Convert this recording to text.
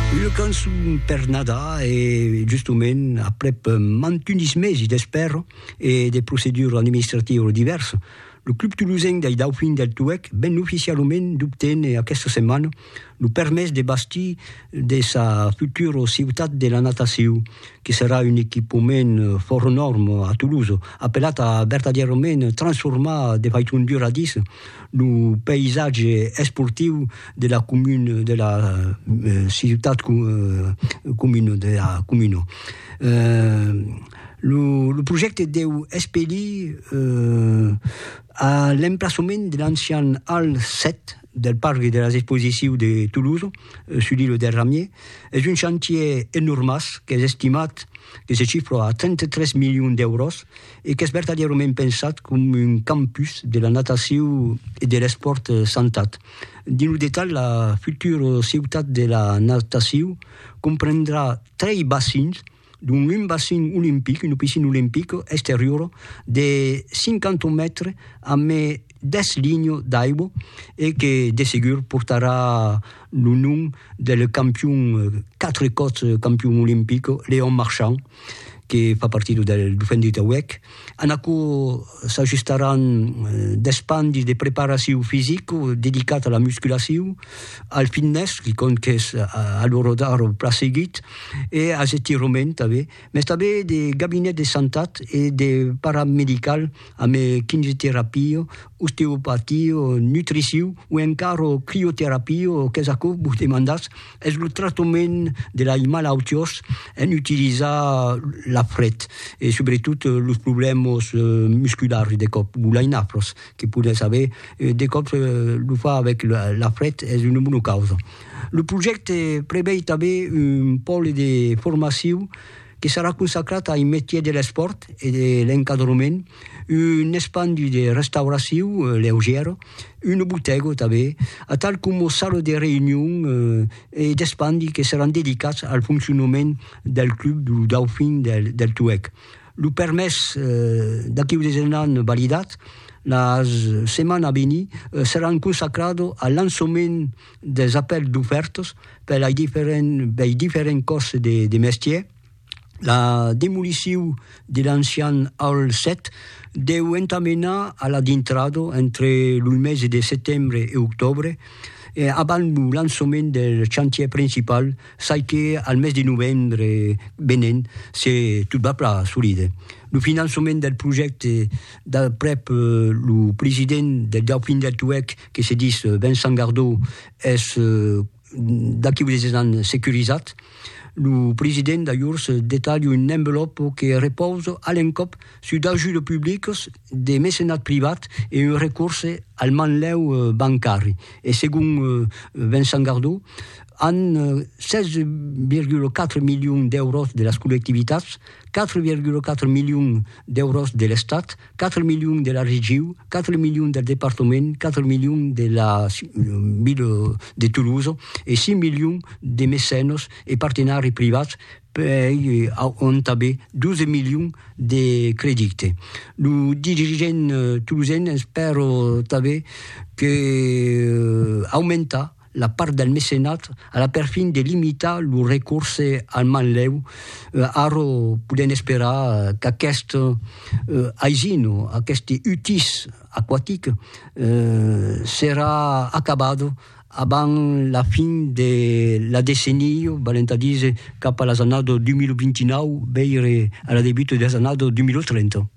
Una cançon per Nadar e justement aprèp mantunis mesi d'espèra e de proceduras administratiras divèrsas, lo club tolosenc dei Daufins del Touèc ven oficialament d'obténer aquesta setmana lo permés de bastir de sa futura ciutat de la natacion, que serà un equipament fòra nòrma a Tolosa, apelat a vertadièrament transformar de faiçon duradissa, Lo païsatge esportiu de la comuna de la ciutat comuna de la comuna. Lo lo projècte deu espelir a l'emplaçament de l'ancian Hall 7 del parc de las exposicius de Toulouse sus l'îlot del Ramier. Es un chantier enormàs qu'es estimat que se chifra a 33 milions d'èuros. e qu'es vertadièrament pensat com un campus de la natacion e de l'espòrt santat. Dins lo detalh, la futura ciutat de la natacion comprendrà trei bacins, dont un bacin olimpic, una piscina olimpica exteriora de 50 mètres amé 10 linhas d'aigua e que de segur portarà lo nom del campion, 4 còps campion olimpic, Léon Marchand, que fa partir del Dauphin de Tauèc. En aquò s'ajustaràn d'espandi de preparacion fisic dedicat a la musculacion, al fitness, quicòm qu'es a lo rodar plan seguit, e als estiroments tanben. Mès tanben de gabinets de santat e de paramedical amb kinioterapia, osteopatia, nutricion o encara crioterapia qu'es aquò vos demandatz, es lo tractament de lai malautiós en utilizar la fret e subretot los problèmas musculars de còp o lai nafras que podètz aver, de còps lo far avèc la fret es una bona causa. Lo projècte prevei tanben un pòle de formacion que serà consacrat ai metiers de l'espòrt e de l'encadrement, un espandi de restauracion leugièra, una botèga tanben, atal coma sala de reünion e d'espandi que seràn dedicats al foncionament del club lo Dauphin del Tuèg. Lo permés d'aquiu de Zenan validat, la setmana a venir seràn consacrada a lançament des apèls dofèrtos per lei diferents bèi diferents còrses de de mestier, la demolicion de l'ancian Hall 7 deu entamenar a la dintrada entre los mesi de setembre e octòbre e abans lo lançament del chantièr principal çai que al mes de novembre venent se tot va plan solide. Lo finançament del projècte d'aprèp lo president del Dauphin del Tuèlh, que se dis Vincent Gardau, es d'aquí unes 10 ans securizat, lo president d'ajors detalha un envelòp que repausa a l'encòp sus d'ajudes publicas, de mecenat privat e un recorse al manlèu bancari. E segon Vincent Gardau, amb 16,4 milions d'èuros de las collectivitats, 4,4 milions d'èuros de l'Estat, 4 milions de la regiu, 4 milions del departament, 4 milions de la ville de Toulouse e 6 milions de mecènos e partenari privats pei auntaver 12 milions de credite. Lo dirigent toulousen espèro tanben que aumentar la part del mecenat a la perfin de limitar lo recorse al manlèu, ara podèm esperar qu'aquest aisin o aqueste utís aquatic serà acabat abans la fin de la decennia, valent a díser cap a las annadas 2029, veire a la debuta de las annadas 2030.